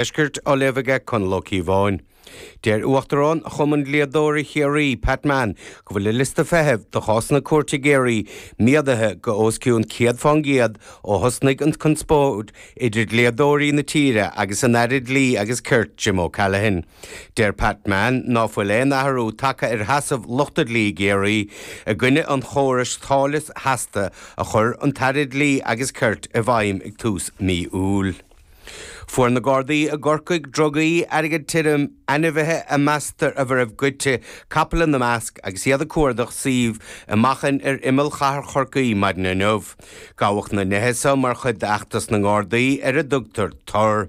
Deiscirt á léamh aige, Conall Ó Cíobháin. Deir Uachtarán Chumann Dlíodóirí Chiarraí, Pat Mann, go bhfuil an liosta feithimh do chásanna cúirte i gCiarraí méadaithe go os cionn céad fán gcéad ó thosnaigh an conspóid idir dlíodóirí na tíre agus an tAire Dlí agus Cirt, Jim O'Callaghan. Deir Pat Mann ná fuil aon athrú tagtha ar sheasamh lucht an dlí i gCiarraí i gcoinne an chórais táille sheasta a chuir an tAire Dlí agus Cirt i bhfeidhm ag tús mí Iúil. Fuair na Gardaí i gCorcaigh drugaí, airgead tirim, ainmhithe a meastar a raibh goidte, capaill ina measc, agus iad ag cuardach suímh i Machan ar imeall chathair Chorcaí maidin inniu. Gabhadh na nithe seo mar chuid d'fheachtas na nGardaí ar a dtugtar 'Tor'.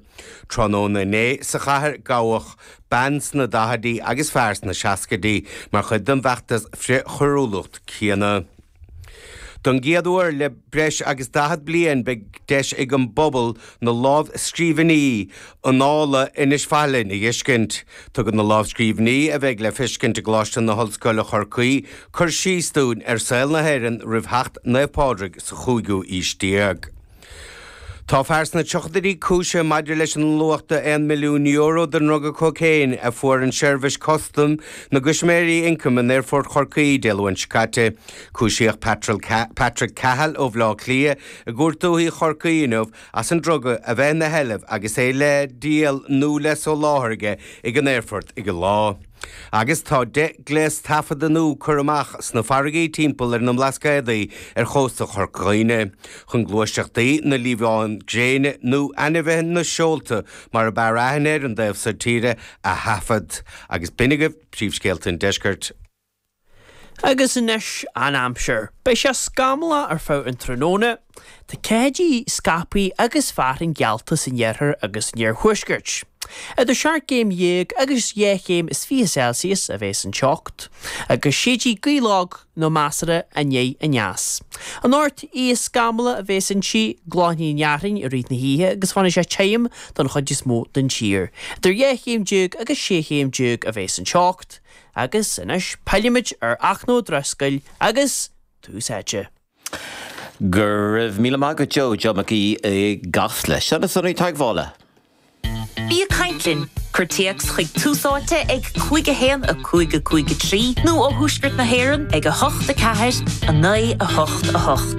Tráthnóna inné sa chathair gabhadh bean sna daichidí agus fear sna seascaidí mar chuid den bhfeachtas frith-choiriúlacht céanna. Don gcéad uair le breis agus 40 bliain beidh deis ag an bpobal na lámhscríbhinní Annála Inis Faithleann a dh'fheiscint. Tugann na lámhscríbhinní a bheidh le feiscint i gColáiste na hOllscoile Chorcaí cur síos dúinn ar saol na hÉireann roimh theacht Naomh Pádraig sa chúigiú aois déag. Tá fear sna tríochaidí cúisithe maidir leis an luach de €1 milliún den druga cócaon a fuair seirbhís custaim na gCoimisinéirí Ioncaim in Aerfort Chorcaí Dé Luain seo caite. Cúisíodh Patrick Cahill ó Bhleá Cliath i gCúirt Dúiche Chorcaí inniu as an druga a bheith ina sheilbh agus é le díol nó le soláthar aige ag an aerfort ar an lá. Agus tá deich ngléas taifeadta nua curtha amach sna farraigí timpeall ar na mBlascaodaí ar chósta Chorca Dhuibhne, chun gluaiseachtaí na liamhán gréine, nó ainmhí na seolta mar ab fhearr aithne ar an dtaobh so tíre, a thaifead. Agus b'in agaibh príomhscéalta an Deiscirt. Agus anois an aimsir. Beidh sé scamallach ar feadh an tráthnóna, tá ceathaideacha scaipthe agus fearthainn geallta san iarthar agus san iarthuaisceart. Idir seacht gcéim dhéag agus dhá chéim is fiche Celsius a bheas an teocht, agus séidfidh gaoth lag nó measartha aniar aneas. Anocht, oíche scamallach a bheas inti, glanfaidh an fhearthainn i rith na hoíche agus fanfaidh sé tirim don chuid is mó den tír. Idir dhá chéim déag agus sé chéim déag a bheas an teocht. Agus anois pillimid ar Fhachtna Ó Drisceoil agus Tús Áite. Go raibh míle maith agat Joe, Joe Mac Aoidh i gCasla. Seo na sonraí teagmhála. Bí ag caint linn! Cuir téacs chuig Tús Áite ag 51553 nó ó thuaisceart na hÉireann ag 8 4 9 8 8.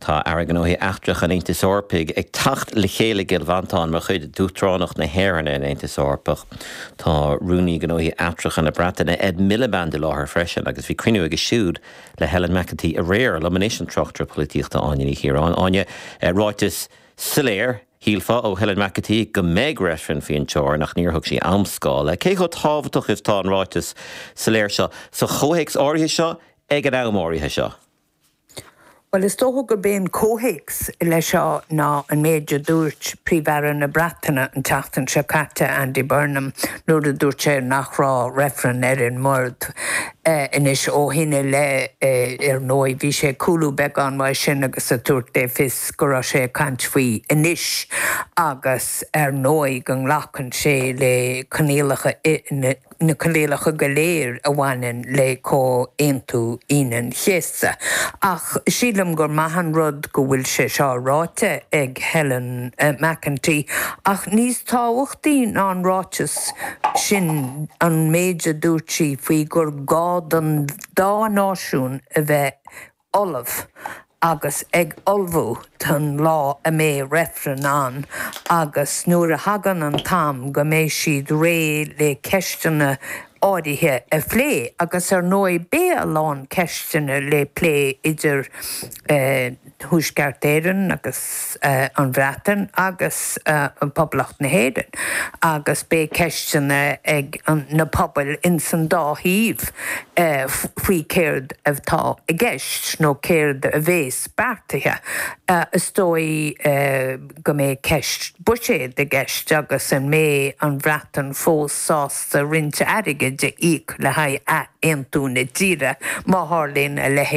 Tá Airí Gnóthaí Eachtracha an Aontais Eorpaigh ag teacht le chéile i gCill Mhantáin mar chuid d'Uachtaránacht na hÉireann ar an Aontas Eorpach. Tá Rúnaí Gnóthaí Eachtracha na Breataine, Ed Miliband i láthair freisin agus bhí cruinniú aige siúd le Helen McEntee aréir. Liom anois an tráchtaire polaitíochta Áine Ní Chiaráin. Áine, ráiteas soiléir, shílfeá, ó Helen McEntee go mbeidh reifreann faoin teorainn ach níor thug sí amscála. Cé chomh tábhachtach is atá an ráiteas soiléir seo sa chomhthéacs áirithe seo ag an am áirithe seo? Bhuel, is dócha gurb é an comhthéacs leis seo ná an méid a dúirt Príomh-Aire na Breataine an tseachtain seo caite, Andy Burnham, nuair a dúirt sé nach raibh reifreann ar an mbord. Anois, ó shin i leith, ar ndóigh, bhí sé ag cúlú beagán uaidh sin agus ag tabhairt le fios go raibh sé ag caint faoi anois agus, ar ndóigh, go nglacann sé le coinníollacha na. na coinníollacha go léir a bhaineann le Comhaontú Aoine an Chéasta, ach sílim gur maith an rud go bhfuil sé seo ráite ag Helen McEntee, ach níos tábhachtaí ná an ráiteas sin an méid a dúirt sí faoi gur gá don dá náisiún a bheith ullamh agus ag ullmhú don lá a mbeidh reifreann ann agus nuair a thagann an t-am go mbeidh siad réidh le ceisteanna áirithe a phlé agus ar ndóigh beidh a lán ceisteanna le plé idir Thuaisceart Éireann agus an Bhreatain agus Poblacht na hÉireann agus beidh ceisteanna ag na pobail ins an dá thaobh faoi céard atá i gceist nó céard a bhéas beartaithe. Is dóigh go mbeidh ceist buiséid i gceist agus an mbeidh an Bhreatain fós sásta roinnt airgid a íoc le haghaidh ath-aontú na tíre, má tharlaíonn a leithéid.